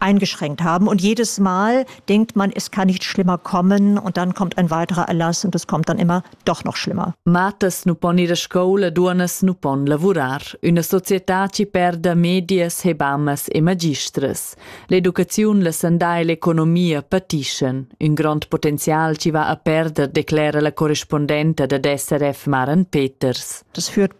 eingeschränkt haben. Und jedes Mal denkt man, es kann nicht schlimmer kommen und dann kommt ein weiterer Erlass und es kommt dann immer doch noch schlimmer. Matas nu pon ir a scoula, duonas nu pon lavurar. Üna società ci perda medias, hebamas e magistras. L'educaziun, la sandà e l'economia patischen. Un grond potenzial ci va a perder, declera la correspondenta dad SRF Maren Peters. Das führt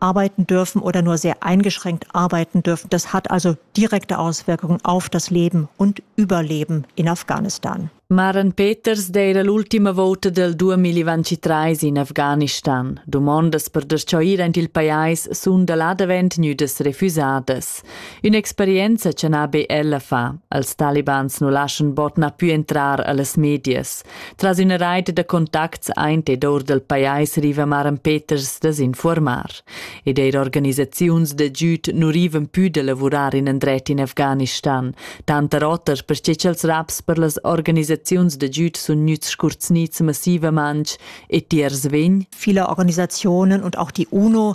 arbeiten dürfen oder nur sehr eingeschränkt arbeiten dürfen. Das hat also direkte Auswirkungen auf das Leben und Überleben in Afghanistan. Maren Peters d'eira l'ultima vouta del 2023 in Afghanistan. Dumondas per deschoir aint il pajais sun da là davent gnüdas refüsadas. Ün'experienza cha n'ha be ella fa. Als talibans nu laschan bot na pü entrar a las medias. Tras üna reit da contacts aint ed our dal pajais riva Maran Peters da s'infuormar ed eir organisaziuns da güd nu rivan pü da lavurar in andret in Afghanistan, tanter oter perche cha'ls raps per las organisaziuns da güd sun gnüts scurzgnits massivamantsch e tiers vegn? Viele Organisationen und auch die UNO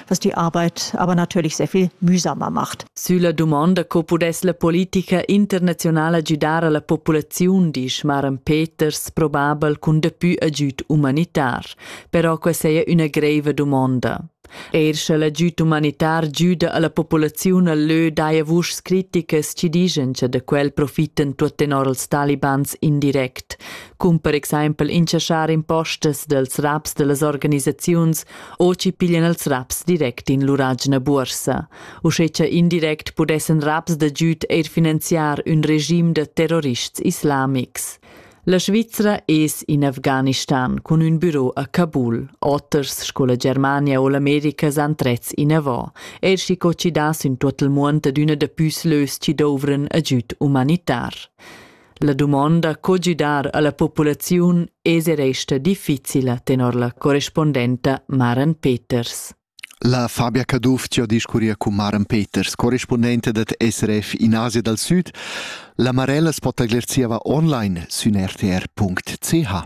dass die Arbeit aber natürlich sehr viel mühsamer macht. Sülla dumonda co pudess la politica internazionala gidar alla populaziun, disch Maren Peters, probabel cun dapü agüd humanitar. Però questa è una greve domanda. Er sche l'agüd humanitar giuda alla populaziun al lö daja vuschs criticas ci digen che da quel profiten tuot tenor els talibans indirect, cum per exaimpel inchaschar impostas dels raps dellas organisaziuns Oci piglian els raps direct in lur agina buorsa, uschè cha indirect pudessan raps da giüd eir finanziar ün regim da terrorists islamics. La Svizra es in Afghanistan cun ün büro a Kabul. Oters sco la Germania o l'America s'han trets inavò, eir schi co chi das in tuot il muond ad üna da püs lös chi douvran agüd umanitar. La dumonda co gidar alla populaziun es e resta difficila tenor la correspondenta Maren Peters. La Fabia Caduff ci ha discurria con Maren Peters, corrispondente dat SRF in Asia dal Sud. La Marella spotaglier zieva online sün rtr.ch.